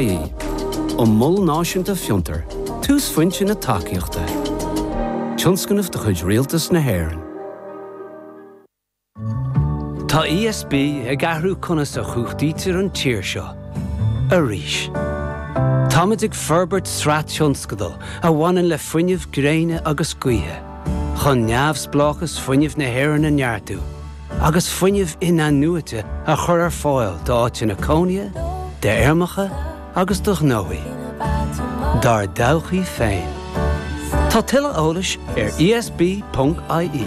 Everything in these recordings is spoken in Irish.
ie. Ón Mol Náisiúnta Fiontar, túsphointe na tacaíochta, tionscnamh de chuid Rialtas na hÉireann. Tá ESB ag athrú conas a chumhachtaítear an tír seo arís. Táimid ag forbairt sraith tionscadal a bhaineann le fuinneamh gréine agus gaoithe chun neamhspleáchas fuinnimh na hÉireann a neartú, agus fuinneamh in-athnuaite a chur ar fáil d'áiteanna cónaithe, d'fheirmeacha agus do ghnóthaí dár dtodhchaí féin. Tá tuilleadh eolais ar ESB.ie.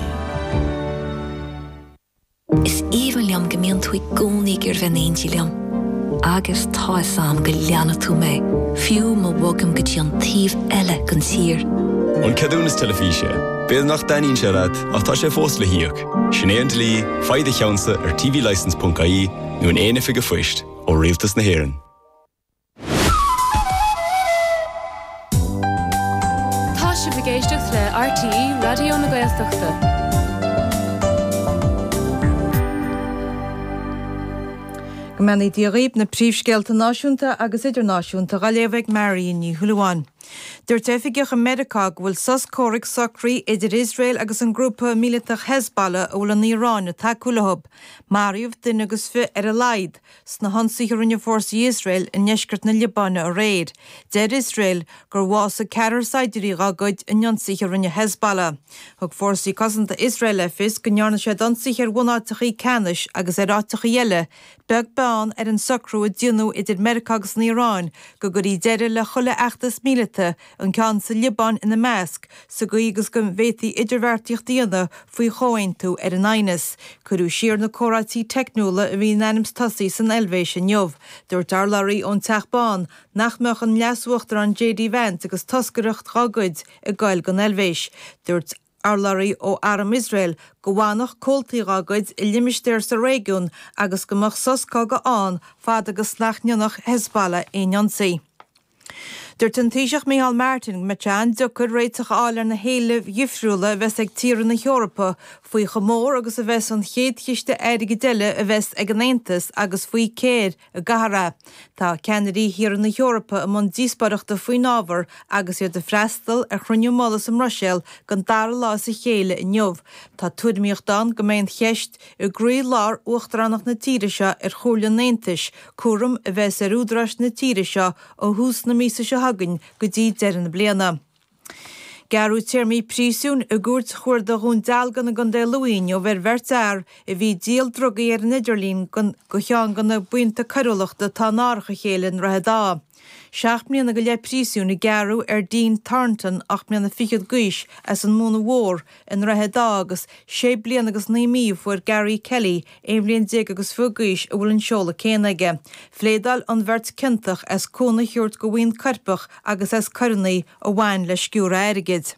Is aoibhinn liom go mbíonn tú i gcónaí ag iarraidh bheith in éindí liom. Agus tá fhios a'm go leanfaidh tú mé, fiú má bhogaim go dtí an taobh eile den tír. An ceadúnas teilifíse. B'fhéidir nach dtaitníonn sé leat, ach tá sé fós le híoc. Sin é an dlí, faigh do cheannsa ar tvlicense.ie nó in aon oifig an phoist ó Rialtas na hÉireann. Tá sibh ag éisteacht le RTÉ Raidió na Gaeltachta. Go mbeannaí Dia dhaoibh na príomhscéalta náisiúnta agus idirnáisiúnta dhá léamh ag Marion Ní Shúilleabháin. Dúirt oifigeach i Meiriceá go bhfuil sos comhraic socraithe idir Iosrael agus an grúpa míleatach Hezbollah a bhfuil an Iaráin ag tacú leo. Maraíodh duine agus fiche ar a laghad sna hionsaithe a rinne fórsaí Iosrael i ndeisceart na Liobáine aréir. Deir Iosrael gur bhásaigh ceathrar saighdiúirí dá gcuid in ionsaithe a rinne Hezbollah. Thug fórsaí cosanta Iosrael le fios go ndearna siad ionsaithe ar bhunáiteachaí ceannais agus ar áiteachaí eile beag beann ar an socrú a déanadh idir Meiriceá agus an Iaráin go gcuirfí deireadh le chuile fheachtas míleata, an ceann sa Liobáin ina measc, sa gcaoi agus go bhféadfaí idirbheartaíocht a dhéanamh faoi chomhaontú ar an aighneas. Cuireadh siar na comhráití teicniúla a bhí in ainm is tosú san Eilvéis inniu. Dúirt urlabhraí ón Teach Bán nach mbeadh an Leas-Uachtarán JD Vance agus toscaireacht dá gcuid ag gabháil don Eilvéis. Dúirt. Urlabhraí ó Arm Iosrael go bhfanfadh comhaltaí dá gcuid i limistéar sa réigiún agus go mbeadh sos cogaidh ann fad agus nach ndéanfadh Hezbollah aon ionsaí. Dúirt an Taoiseach Micheál Martin go mbeadh sé an-deacair réiteach a fháil ar na héilimh dhifriúla a bheas ag tíortha na hEorpa faoi chomh mór agus a bheas an chéad chiste airgid eile a bheas ag an Aontas agus faoi cér a gcaithfear é. Tá ceannairí thíortha na hEorpa i mbun díospóireachta faoin ábhar agus iad ag freastal ar chruinniú mullaigh sa mBruiséil den dara lá as a chéile inniu. Tá tuairimíocht ann go mbeidh an cheist i gcroílár uachtaránacht na tíre seo ar Chomhairle an Aontais, cúram a bheas ar údaráis na tíre seo ó thús na míosa seo chugainn go dtí deireadh na bliana. Gearradh téarmaí príosúin i gCúirt Chuarda Dhún Dealgan i gContae Lú inniu ar bheirt fhear a bhí ag díol drugaí ar an idirlíon do cheann de na buíonta coiriúlachta atá in árach a chéile i nDroichead Átha. Seacht mbliana go leith príosúin a gearradh ar Dean Thornton, ocht mbliana fichead d'aois as an Mónaidh Mhór, I nDroichead Átha agus sé bliana agus naoi mí a fuair Gary Kelly, aon bhliain déag agus fiche d'aois a bhfuil an seoladh céanna aige. Phléadáil an bheirt ciontach as cúnamh a thabhairt do bhuíon coirpeach agus as coireanna a bhain le sciúradh airgid.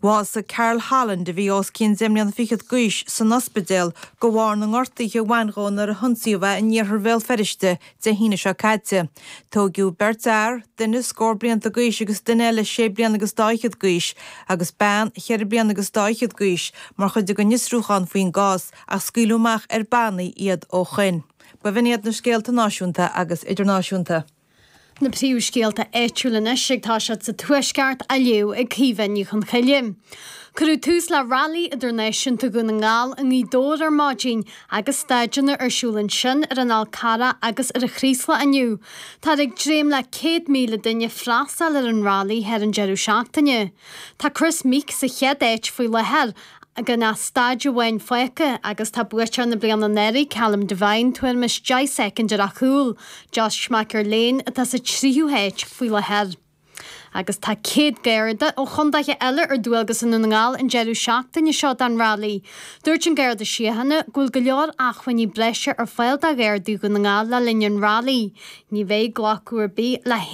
Bhásaigh Carl Holland, a bhí os cionn deich mbliana fichead d'aois, san ospidéal de bharr na ngortuithe a bhain dhó nuair a hionsaíodh é in Iarthar Bhéal Feirste Dé hAoine seo caite, tóigeadh beirt fhear, duine scór blianta d'aois agus duine eile sé bliana agus dá fhichead d'aois, agus bean cheithre bliana agus dá fhichead d'aois, mar chuid den fhiosrúchán faoin gcás, ach scaoileadh amach ar bannaí iad ó shoin. B'in iad na scéalta náisiúnta agus idirnáisiúnta. Na príomhscéalta áitiúla anois ag tosacht sa Tuaisceart, á léamh ag Caoimhe Ní Chonchoille. Cuireadh tús le Railí Idirnáisiúnta Dhún na nGall i nGaoth Dobhair ar maidin Agus staideanna ar siúl ansin ar an Fhál Carrach agus ar an Chraoslach inniu, táthar ag dréim le 100,000 duine freastal ar an Rally thar an deireadh seachtaine. Tá Kris Meeke sa chéad áit faoi láthair gan ach staid amháin fágtha agus tá buaiteoir na bliana anuraidh Callum Devine tuairim is deich soicind ar a chúl, Josh McErlean atá sa tríú háit faoi láthair. agus tá céad Garda ó chontaetha eile ar dualgas i nDún na nGall an deireadh seachtaine seo don Rally. Dúirt an Garda Síochána go bhfuil go leor acmhainní breise ar fáil do Ghardaí Dhún na nGall le linn an Rally. Ní bheidh glacadh ar bith le.